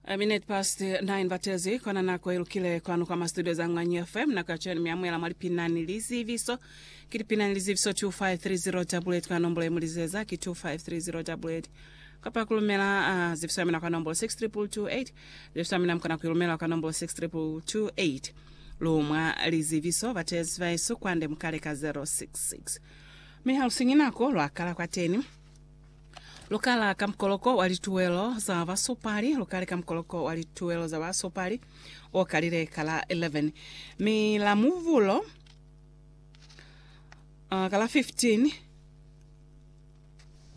A minute past 9 batezi kona nako ilukile kwanu kwa mastudio za Ngwanyi FM na kachani miamwela mwa lipinani liziviso ki lipinani liziviso 2530 kwa nombolo ye mulizeza ki 2530 kapa kulumela uh, ziviso yamina kwa nombolo 62228 ziviso yamina mkona kuilumela kwa nombolo 62228 lumwa liziviso batezi vaisu kwande mukale ka 066 mihalusinyi nako lwakala kwateni Lukala ka mukoloko wa lituwelo za basupali, lukali ka mukoloko wa lituwelo za basupali o kalile ka la 11, mi la muvulo uh, ka la 15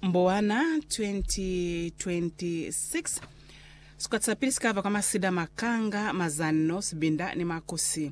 Mbowana 2026. Sikwati sa pili sikava kwa masida, makanga, mazanno, sibinda ni makusi.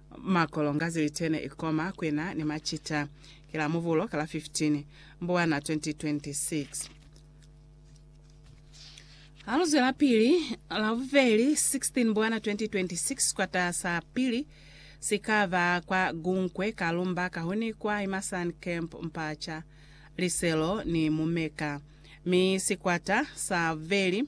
Makolo nga zilite ne i koma ku ena ni macita. Ki la Mubulo ka la 15 Mbwana 2026. Ha lu zwelapili, la bubeli 16 Mbwana 2026, sikwata sa pili si ka ba kwa Gunkwe, Kalumba, Kahuni kwa Imasan Camp, Mpacha, Liselo ni Mumeka, mi sikwata sa bubeli,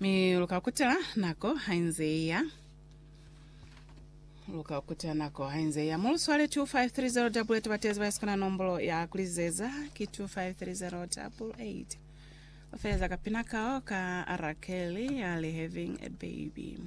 Mi luka kutela nako hainze iya. Luka kutela nako hainze iya. Mulu swale 2530 double eight batezi bayesu kana nombolo ya kulizeza ki 2530 double eight. Ofeleza kapina kao ka Arakeli ya le having a baby.